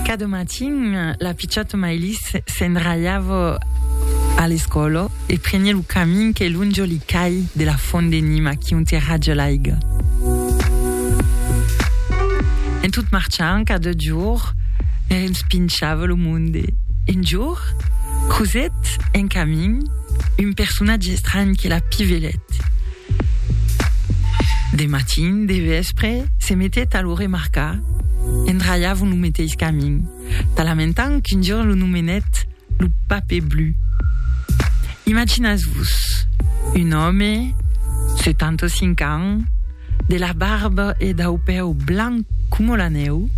Cada matin, la pichòta Maylis se'n ralhava a l'escòla e preniá lo camin que lonja li cai de la fònt de Nima qui ont e raja l'aiga. En tot marchant, cada jorn, ne respinchava lo monde. Un jorn, crosèt en camin un personatge estranh que la pivelèt. De matin, de vèspre, se metèt a lo remarcar, endralhavon lo meteis camin, talamentant qu'un jorn lo nomenèt lo Pape Blu. Imaginatz-vos, un òme, 75 ans, de la barba e dau pèu blanc coma la nèu,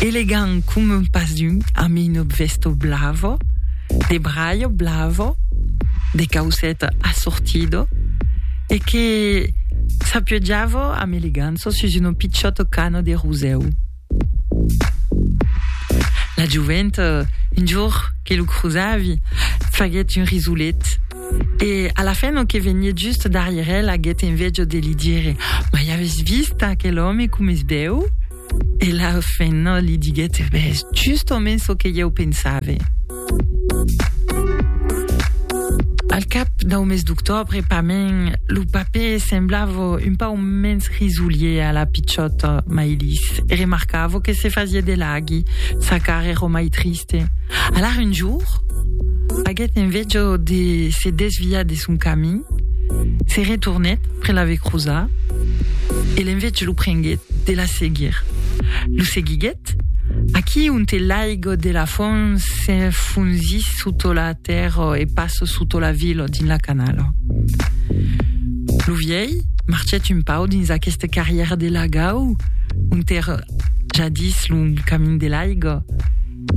Elegant com un pasun amb un obvèsto blavo, de braio blavo, de cauceta assortido e que s'apiojavo amb eleganço sus un pichòto cano de rosèu. La jovent, un jorn que lo crosavi, faguèt un risolet e a la fin lo que venièt just darrièr el aguèt envejo de li dire, Mai aves vist aquel òme com es bèu? E la fenna li diguèt, Ves justament çò que ieu pensave. Al cap dau mes d'octòbre, pament, lo papè semblava un pau mens risolier a la pichòta Maïlis e remarcava que se fasiá de laghi, sa cara èra mai triste. Alara un jorn, aguèt enveja de se desviar de son camin, se retornèt près la vecrosa e l'enveig lo prenguèt de la seguir. Lo seguiguèt aquí onte l'aigo de la font s'enfonzís soto la tèrra e pas soto la vila dins la canala. Lo vièlh marchèt un pau dins aquesta carrièra de lagau onte èra jadís lo camin de l'aiga,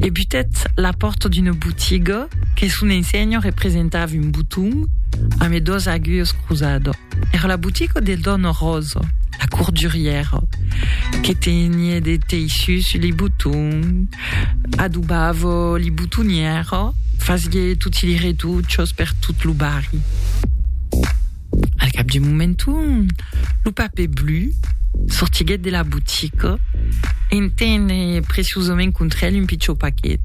e butèt la pòrta d'una botiga que son ensenha representava un boton amé dos aguilhas crosada. Era la botiga de dòna Rosa, la cordurièra, que tenie de teissus li botons, adobava li botonièra, fasié toti li retuchas per tot lo barri. Al cap d'un moment, lo papè blu sortiguèt de la botica e en tene preciosament contra el un pichon paquet.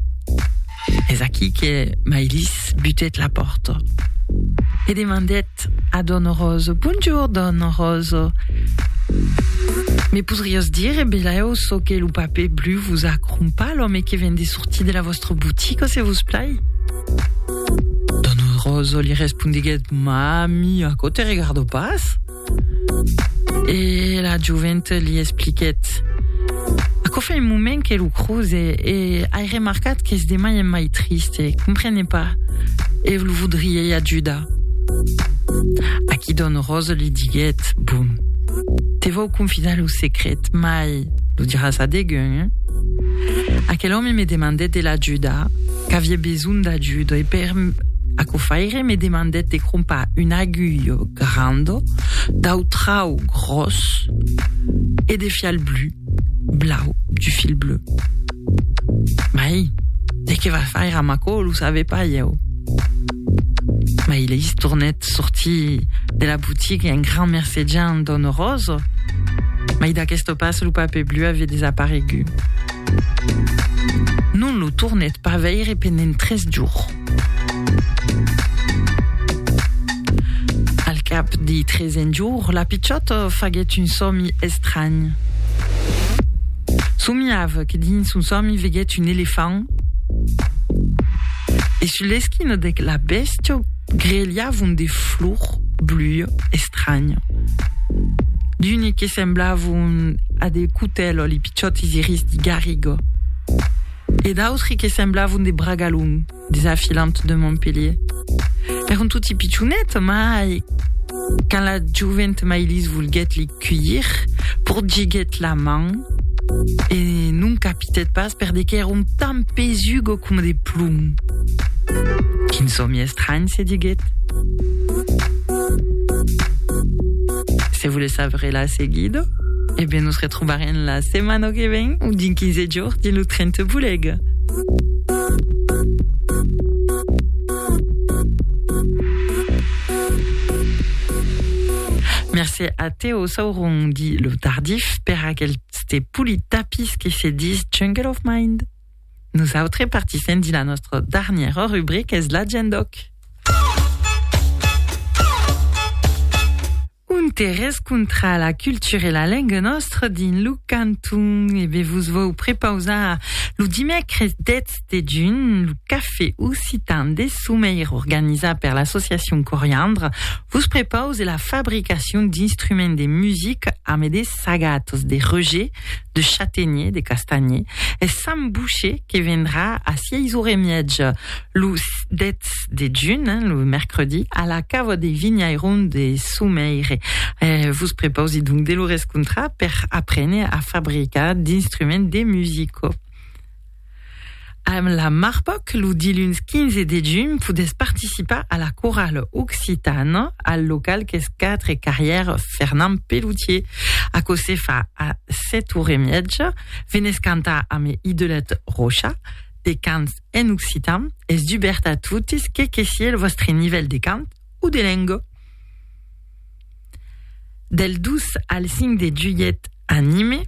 Es aquí que Mailis butèt la pòrta e demandèt a dòna Rosa, Bonjour, dòna Rosa, me podriás dire belèu çò que lo papè blu vos a crompar l'òme que ven de sortir de la vòstra botica, se vos plai? Don Roso li respondiguèt, Mami, aquò te regardo pas? E la joventa li expliquèt, Aquò fa un moment que lo croze e ai remarcat qu'es de mai en mai triste, comprene pas, e lo vodriei ajudar. Aquí Don Roso li diguèt, Bon, te vau confidar lo secret, mai, lo diràs a degun, eh? Aquel òme me demandèt de l'ajuda, qu'avié besonh d'ajuda, e per aquò faire me demandèt de crompar un aguilh grand dau trau gròs e de fial blu, blau, du fil bleu. Mai, de qué va faire amb aquò, lo save pas ieu. Mai leis tornèt sortir de la botiga e un grand mercejant dòna Rosa. Mai d'aquesta pas lo paper blu avè desaparegut. Non lo tornèt pas veire pendent tres jorns. Al cap dei tresen jorn, la pichòta faguèt un sòmi estranh. Somiava que dins son sòmi veguèt un elefant E sul l'esquina de la bèstia grelhavon de flors blues estranya. D'uni que semblavon a de cutèlo li pichòtis iris de garriga e d'autri que semblavon de bragalon des afilants de Montpellier. Èran toti pichonets, mai quand la jovent Mailís volguèt li cuilhir, pordiguèt la man e non capitèt pas per de qu'èra un tant pesugo coma de plom. Quin sòmi estranh, se diguèt. Se volètz saber la seguida, e ben nos retrobarem la setmana que ven o dins 15 jorns dins lo tren te bolega. Se a Teo Sauron di lo tardif per aqueste polit tapís que se dis Jungle of Mind. Nosautres partissem di la nostra darnièra rubrica es la gent d'Oc. interès contra la cultura e la lenga nostra dins lo canton. E bé vos vau prepausar lo dimècres 10 dejun, lo cafè occitan de Someir organizat per l'associacion Coriandre vos prepause la fabricacion d'instruments de music ame de sagatos de reuger, de chatenier, de castanhier e Sant Boucher que vendrà a sièis ore e miètja lo 10 de junh, lo mercredi, a la cava de Vinhairon de Someir. Vos prepause donc de lo rescontrar per aprene a fabricar d'instruments de musico. Amb la Marpoc, lo diluns 15 de junh podètz participar a la corala occitana al local qu'es 4 carrièr Fernand Pelloutier. Aquò se fa a 7 ore e miètja. Venètz cantar amb Idolet Rocha, de cants en occitan. Es dubèrt a totes, que que sié lo vòstre nivèl de cant o de lenga. Del 2 al 5 de julhet, anime.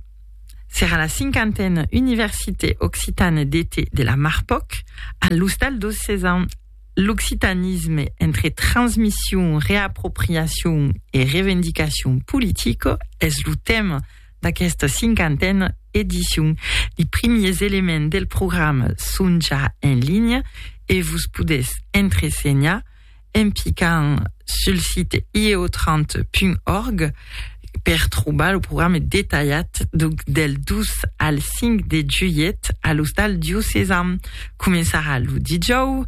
Serà la cinquantena Université occitane d'été de la Marpòc a l'Ostal dos Cézanne. L'occitanisme entre transmission, reapropriation e revendicacion politica es lo tèma d'aquesta cinquantena edicion. Li primiers elements del programa son ja en linha e vos podètz entresenhar en picant sul site ieotrant.org per trobar lo programa detalhat del 2 al 5 de julhet a l'Ostal Diocesan. Començarà lo dijòu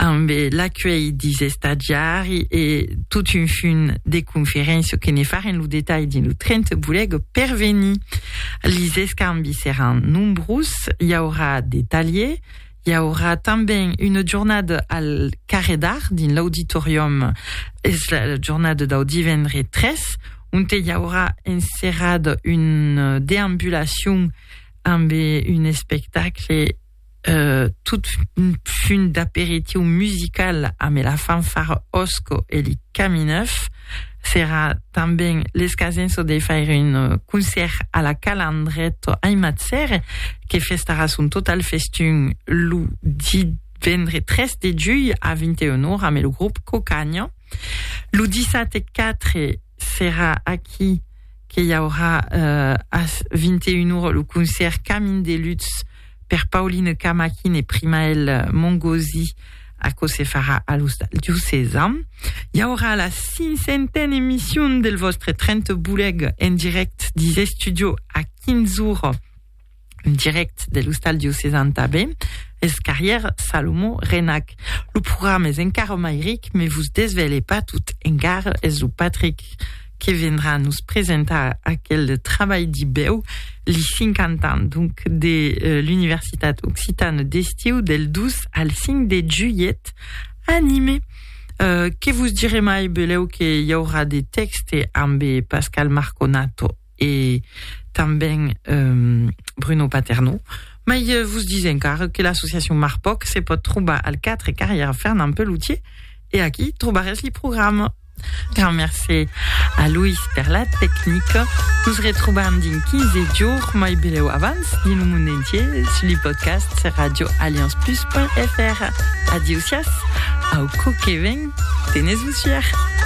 amb l'acuelh dis estadiari e tot un fum de conferéncia que ne farem lo detalh dins lo 30 Volèg per venir. Lis escambis seràn nombrós, i aurà de talhier, I aurà tanben una jornada al Carrèr d'Art, dins l'auditorium, es la jornada dau divendre 3, onte i aurà enserrada una deambulacion amb un espectacle eh, tot funt d'aperitiu musical amb la fanfara Osco e li Camineuf, Serà tanben l'escasenço de faire un concèrt a la Cala Andrèto Aimatzer, que festarà son total festin lo divendre 3 de julh a 21 ora amb lo grop Cocaña. Lo dissate 4 serà aquí que i aurà eh, as 21 ora lo concèrt Camin de Lutz per Pauline Camaquin e Primael Mongosi aquò se farà a l'Ostal Diocesa. I aurà la cinquantena emission del vostre 30 boleg en direct dis estudio a 15 ora un direct de l'ostal diocesan tanben, es carrièr Salomon Renac. Lo programa es encara mai ric, me vos desvèle pas tot, encara es lo Patrick que vendrà nos presentar aquel trabalh dibèu, li 50 ans donc de l'Universitat Occitane d'Estiu del 2 al 5 de julhet a Nime. Que vos dire mai, beleu que i aurà de tèxte ambe Pascal Marconato. e tanben Bruno Paternò, mai vos dis encara que l'associacion Marpòc se pòt trobar al 4 carrièra Fernand Pelloutier e aquí trobarètz li programa. Grand mercé a Loïs per la tecnica. Nos retrobam dins 15 jorns, mai belèu abans, dins lo mond entier sus li podcasts radioallianceplus.fr. Adieu siás, au còp que ven, tenètz-vos fièr!